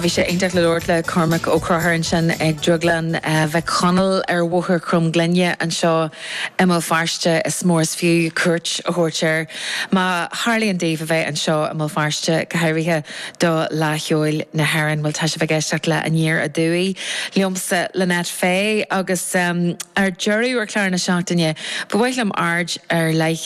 Bhí sé iontach le labhairt le Cormac Ó Cruthar ansin ag Drioglann Mhic Chonaill ar Bhóthar Chromghlinne anseo i mBéal Feirste. Is mór is fiú cuairt a thabhairt air má tharlaíonn daoibh a bheith anseo i mBéal Feirste, go háirithe do Fhleadh Cheoil na hÉireann. Bhuel, tá sibh ag éisteacht le Aniar Aduaidh liomsa, Lynette Fay, agus ar deireadh ar chlár na seachtaine ba mhaith liom aird ar leith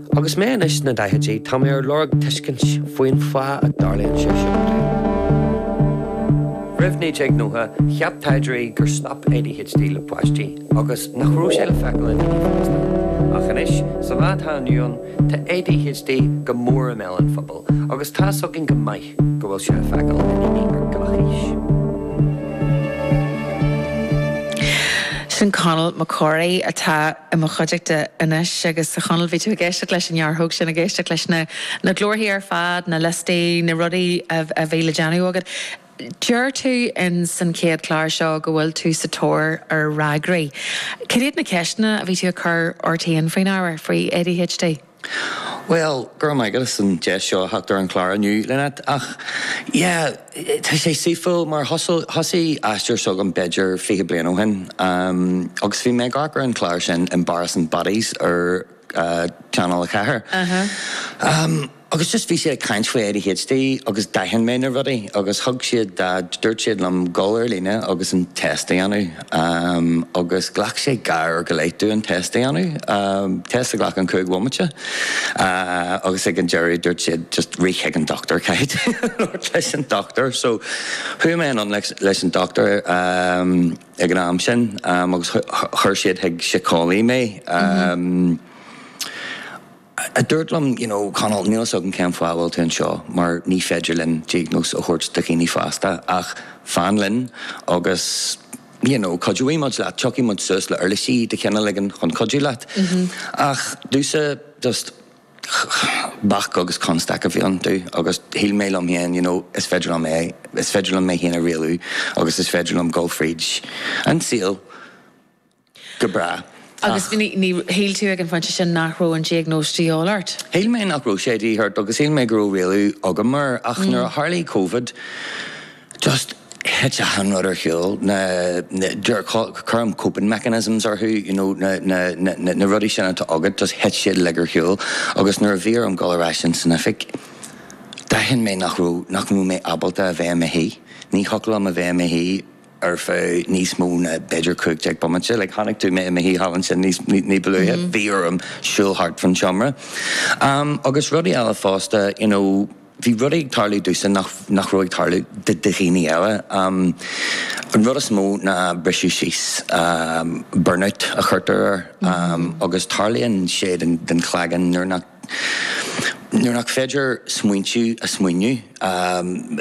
Agus mé anois sna daichidí, tá mé ar lorg tuiscint faoin fáth a dtarlaíonn sé seo domh. Roimh 1990, cheap taighdeoirí gur stop ADHD le páistí agus nach raibh sé le feiceáil i ndaoine fásta. Ach anois, sa lá atá inniu ann, tá ADHD go mór i mbéal an phobail, agus tá a fhios againn go mbíonn, sé le feiceáil i ndaoine ar gach aois. Sin Conall Mac Corraidh atá i mo chuideachta anois agus a Chonall bhí tú ag éisteacht leis an ngearrthóg sin, ag éisteacht leis na na glórthaí ar fad, na liostaí, na rudaí a bhí le déanamh agat. Deir tú ins an chéad chlár seo go bhfuil tú sa tóir ar fhreagraí. Cad iad na ceisteanna a bhí tú ag cur ort féin faoin ábhar, faoi ADHD? Bhuel, go raibh maith agat as an deis seo a theacht ar an chlár inniu, Lynette. Ach, yeah, tá sé saoithiúil, mar thosaigh an t-aistear seo agam b'fhéidir fiche bliain ó shin, agus bhí mé ag amharc ar an chlár sin Embarrassing Bodies ar Channel a Ceathair, agus just bhí siad ag caint faoi ADHD agus d'aithin mé na rudaí, agus thug siad, dúirt siad liom dhul ar líne agus an test a dhéanamh. Um agus ghlac sé uair go leith domh an test a dhéanamh. Um test a ghlacann cúig bhomaite. Uh agus ag an deireadh dúirt siad just rith chuig an dochtúir caithfidh tú labhairt leis an dochtúir. So chuaigh mé ann leis, leis an dochtúir um ag an am sin um agus chuir siad chuig síceolaí mé. Um. a dúirt liom, you know, Conall, níl a fhios agam cén fáth a bhfuil tú anseo mar ní féidir linn diagnóis a thabhairt do dhaoine fásta ach fan linn agus, you know, cuideoidh muid leat, tiocfaidh muid suas le uirlisí de chineál éigin chun cuidiú leat. Ach domhsa, just bac agus constaic a bhí iontu agus shíl mé liom féin, you know, is féidir liom é, is féidir liom mé féin a rialú agus is féidir liom dul fríd an saol. Go breá, Agus ach. shíl tú ag an phointe sin nach raibh an diagnóis de dhíth ort? Shíl mé nach raibh sé de dhíth orm agus shíl mé go raibh rialú agam air ach nuair a tharlaigh Covid, just thit achan rud ar chúl, na, cuirim coping mechanisms orthu, you know, na, na, na, na rudaí sin atá agat, just thit siad uilig ar chúl agus nuair a bhí orm dul ar ais in san oifig, d'aithin mé nach raibh, nach raibh mé ábalta a bheith i mo shuí, ní thiocfadh liom a bheith i mo shuí. ar feadh níos mó ná b'fhéidir cúig déag bomaite. Like, chonaic tú mé i mo shuí thall ansin ní ba luaithe, bhí orm siúl thart fán tseomra. Am, agus rudaí eile fosta, you know, bhí rudaí ag tarlú domhsa nach, nach raibh ag tarlú do, do dhaoine eile. Am, an rud is mó ná briseadh síos, am, burnout a chuirtear air. Am, agus tarlaíonn sé den, den chloigeann nuair nach. Nuair nach féidir smaointiú a smaointiú,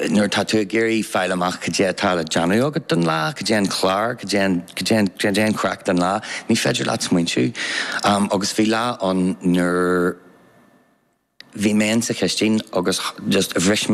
nuair atá tú ag iarraidh fáil amach cad é atá le déanamh agat don lá, cad é an clár, cad é an, cad é an, cad é an chraic don lá, ní féidir leat smaointiú. Agus bhí lá ann nuair a bhí mé ins an chistin agus just bhris